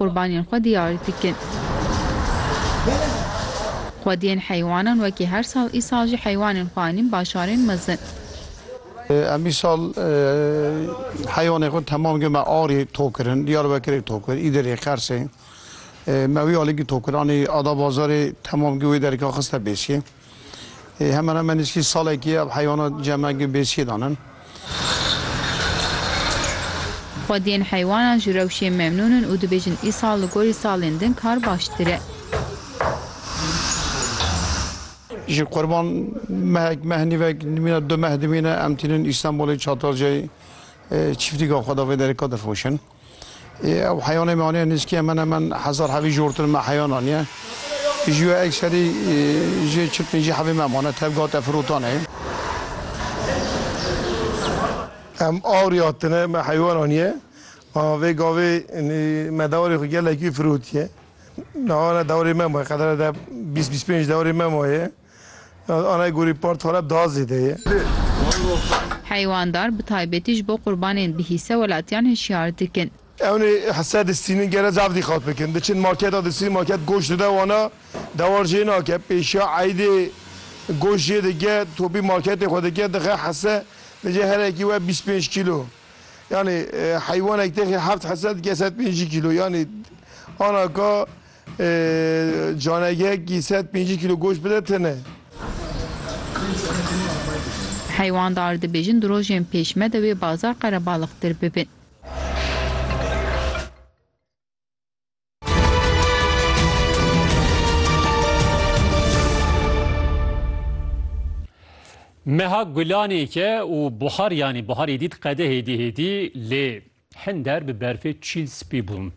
qurbaniyên xwe diyar dikin. Xwediyên heywanan wekî her sal îsal jî heywanên xwe anîn başarên mezin. Em îsal heywanên xwe temam geh me Arê tok kirin, Diyarbekirê tok kir, Îdirê, Qersê. Me wî alî geh tok kir anî Adabazarê temam geh wê derîka xiste pêşê. Hemen hemen nîskî salekî ev heywana ceme gi bêsiyê dan in. Xwediyên heywanan ji rewşê memnûn in û dibêjin îsal li gorî salên din kar baştir e. Ji qurban mehek meh nîvek dimîne du meh dimîne em tînin Îstanbulê Çatalcayê çîftîka xwe de vê derê ka difiroşin. Ew heyanê me aniye nêzîkî hemen hemen hezar hevî ji hortir me heyan aniye. Ji we ekserî ji çil pêncî hevê me mane tev gate firotanê. Em awriya tune me heyan aniye. Bala vê gavê me dewarê xwe gelekî firotiye. Niha ne dewarê me maye qedere de bîst bîst pênc dewarê me maye. Anayê gorî part Halep daha zêde ye. Heywaandar bi taybetî ji bo qurbanên bi hîse welatiyan hişyar dikin. Ewnê hise distînin gere zaf dîqat bikin. Diçin marketa distînin market goşt dide wana dewar jê nake. Pêşiya eydê goşt jê dike topî marketê xwe dike dixe hise dice her yekî we bîst pênc kîlo. Yanî heywanek têxê heft hise dike sed pêncî kîlo. Yanî ana ka Canegek ki sed pêncî kîlo goşt bide tune. Heywandar dibêjin di rojên pêş me de wê bazar qerebalixtir bibin. Meha gulanê ke û buhar yanî buhar êdît qedehêdî hêdî lê. Hinder bi berfê çîl spî bûn.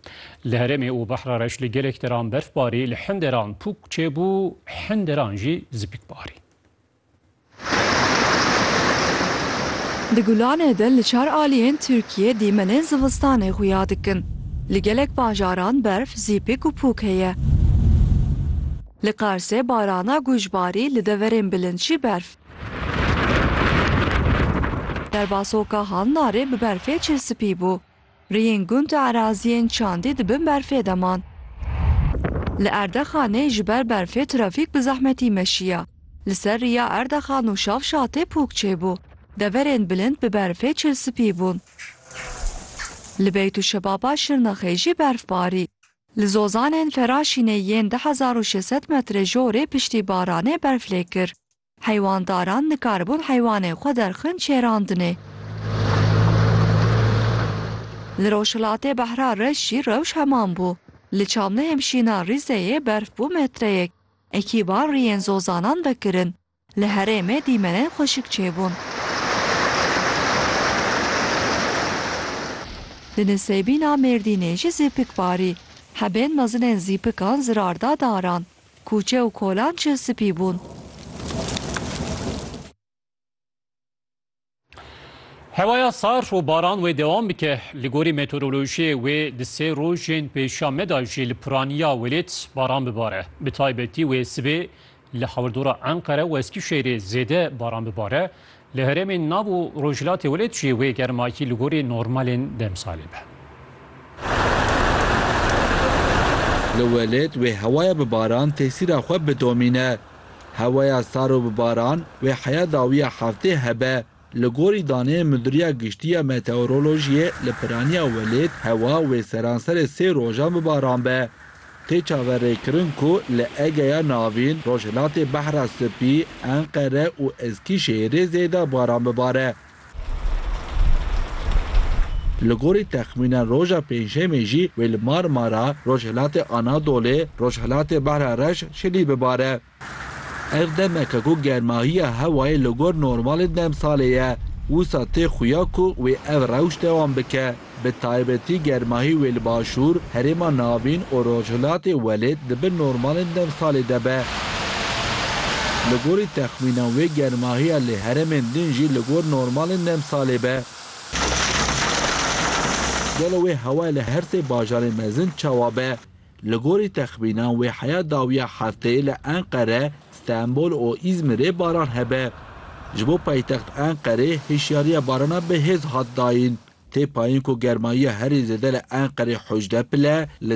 Li herêmê û Behra Reş li gelek deran berf barî, li hin deran pûk çêbû, hin deran jî zipik barî. Di Gulanê de li çar aliyên Tirkiyê dîmenên zivistanê xuya dikin. Li gelek bajaran berf, zîpik û pûk heye. Li Qarsê barana guj barî, li deverên bilind jî berf. Derbasoka Halnarê bi berfê çil spî bû. Riyên gund û eraziyên çandî di bin berfê de man. Li Erdexanê ji ber berfê trafîk bi zehmetî meşiya. Li ser riya Erdexan û Şavşatê pûk çêbû. Deverên bilind bi berfê çil spî bûn. Li Beytûşebaba Şirnexê jî berf barî. Li Zozanên Feraşînê yên du hezar û şeş sed metre jorê piştî baranê berf lê kir. Heywandaran nikaribûn heywanên xwe derxin şêrandinê. Li rojhilatê Behra Reş jî rewş heman bû. Li Çamlêhê Şîna Rîzeyê berf bû metreyek. Ekîban riyên zozanan vekirin. Li herêmê dîmenên xweşik çêbûn. Li Nisêbîna Mêrdînê jî zîpik barî. Hebên mezinên zîpikan zirar da daran. Kûçe û kolan çil spî bûn. Hewaya sar û baran wê dewam bike. Li gorî meteorolojiyê wê di sê rojên pêşiya me de jî li piraniya welêt baran bibare. Bi taybetî wê sibê li hawirdora Enqere û Eskîşehîrê zêde baran bibare. Li herêmên nav û rojhilatê welêt jî wê germakî li gorî normalên demsalê be. Li welêt wê hewaya bi baran tesîra xwe bidomîne. Hewaya sar û bi baran wê heya dawiya heftê hebe. Li gorî daneyên Mudiriya Giştî ya Meteorolojiyê li piraniya welêt hewa wê seranserê sê rojan bi baran be. Tê çaverêkirin ku li Egeya Navîn, Rojhilatê Behra Spî, Enqere û Eskîşehîrê zêde baran bibare. Li gorî texmînan roja Pêncşemê jî wê li Marmara, Rojhilatê Anadolê, Rojhilatê Behra Reş, Şilî bibare. Ev demeke ku germahiya hewayê li gor normalê demsalê ye, wisa tê xuya ku wê ev rewş dewam bike, bi taybetî germahî wê li başûr, herêma navîn û rojhilatê welêt di bin normalên demsalê de be. Li gorî texmînan wê germahiya li heremên din jî li gor normalên demsalê be. Gelo wê hewayê li her sê bajarên mezin çawa be? Li gorî texmînan wê heya dawiya hefteyê li Enqere, Stenbol û Îzmîrê baran hebe. Ji bo paytext Enqerê hişyariya barana bi hêz hat dayîn. Tê payîn ku germayiya herî zêde li Enqerê hewcdeh pil e, li